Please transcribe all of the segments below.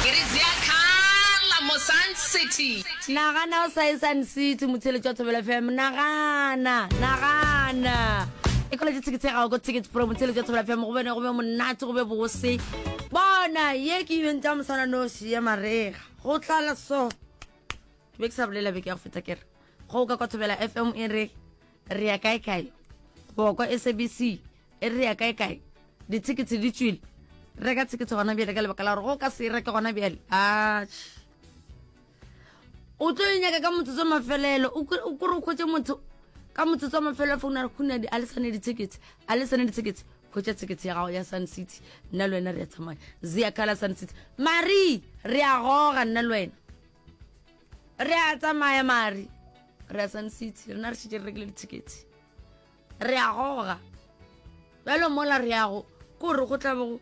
Ke re tseya khala mo Sun City. Nagana o sa ye Sun City, motheletši wa Thobela FM. Nagana, nagana. E kola tše tickets ya gago ko Ticket Pro, motheletši wa Thobela FM. Go bene go be monate, go be bose. Bona, ye ke event ya mosana noši ya marega. Go tlala so. Ke be ke sa bolela beke ya go feta kere. Go ka kwa Thobela FM e re re ya kae kae boko sabc e re ya kae kae ditsheketse di tswile reka tsheketse gona bjale ka lebaka la gore go ka se e reke gona bjale atšhe o tlo e nyaka ka motsotso mafelelo o kore o kgwetse motho ka motsotso mafelelo founa re kgona a le sane ditsheketse a le sane ditsheketse kgwetsa tsheketse ya gago ya sun city nna le wena re ya tsamaya zea kala sun city mari re a goga nna le wena re a tsamaya mari re a sun city rena re šitše re rekile dithekete re a goga bjalo mola re yago ke gore go tlabogo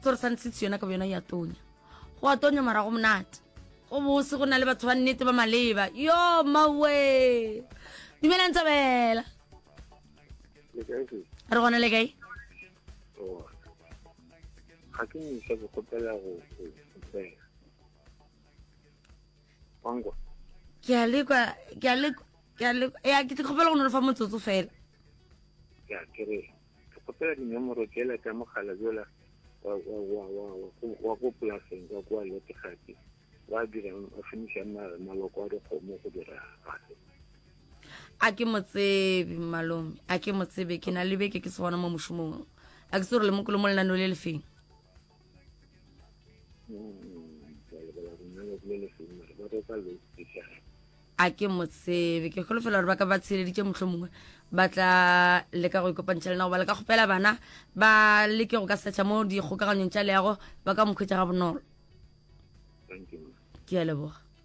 tsore sun city yona ka bo yona ya tonya go a tonya mara go monate go bose go na le batho ba nnete ba maleba yo mawe dumelang tsabela re gona le kae ga ke misa ke kgopela go wangwa ke a lekwa ke a lekwa ke a lekwa ya ke kgopela go no fa motsotso fela ya ke re ke kgopela dinomoro tsela tsa mogala jola wa wa wa wa wa go polaseng ka kwa letegati wa dirang a finiša maloko a dikgomo go dira gape a ke motsebe malome a ke motsebe ke na le beke ke se gona mo mošomong a ke se gore le mokolo mo lenano le lefeng a ke mo tsebe ke kgolofela gore ba ka ba tsheleditše motlho mongwe ba tla leka go ikopantšha le na goba le ka kgopela bana ba leke go ka setšha mo dikgokaganyong tša leago ba ka mokhwetša ga bonolo ke a leboga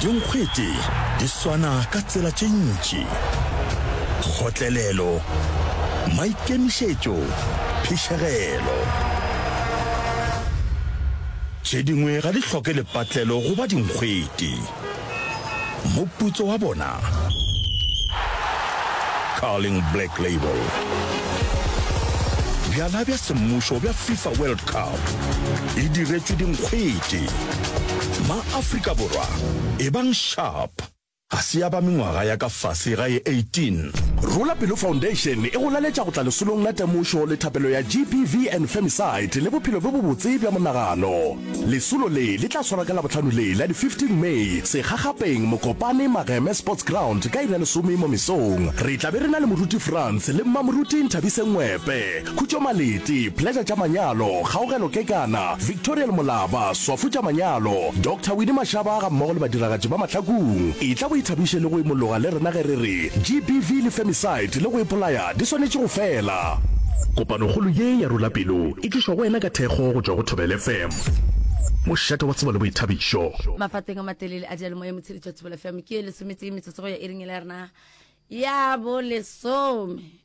Dinkgwete di swana ka tsela tše ntši, kgotlelelo, maikemišetšo, phišegelo. Tše dingwe ga di hloke lepatlelo go ba dinkgwete. Moputso wa bona, Carling Black Label. Bjala bja semmušo bja FIFA World Cup e diretšwe dinkgwete. MaAfrika Borwa, ebang sharp! Ga se ya ba mengwaga ya ka fase ga e 18. Rula Pelo Foundation e go laletša go tla lesolong la temošo le thapelo ya GBV and Femicide le bophelo bjo bobotse bja monagano. Lesolo le le tla swarwa ka Labohlano le la di 15 May Segagapeng, Mokopane, Mageme Sports Ground ka iri ya lesome mo mesong. Re tla be re na le Moruti Frans le Mmamoruti Nthabise Ngwepe. Khutšo Maleti, Pleasure tša Manyalo, Kgaogelo Kekana, Victorial Molaba, Swafo tša Manyalo, Doctor Winnie Mashaba ga mmogo le badiragatši ba Mahlakung. Etla o ithabiše le go imologa le rena ge re re GBV le femicide le go ipolaya di swanetše go fela. Kopanokgolo ye ya Rula Pelo e tlišwa go wena ka thekgo go tšwa go Thobela FM, mošate wa tsebo le boithabišo. Mafateng a matelele a diyalemoya motsheditšwa Thobela FM ke ye lesometee metsotso go ya iring yela ya rena ya bolesome.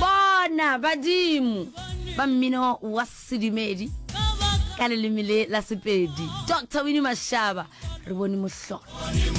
bona badimo ba mmino wa sedumedi ka leleme le la sepedi dr winnie mashaba re bone mohlolo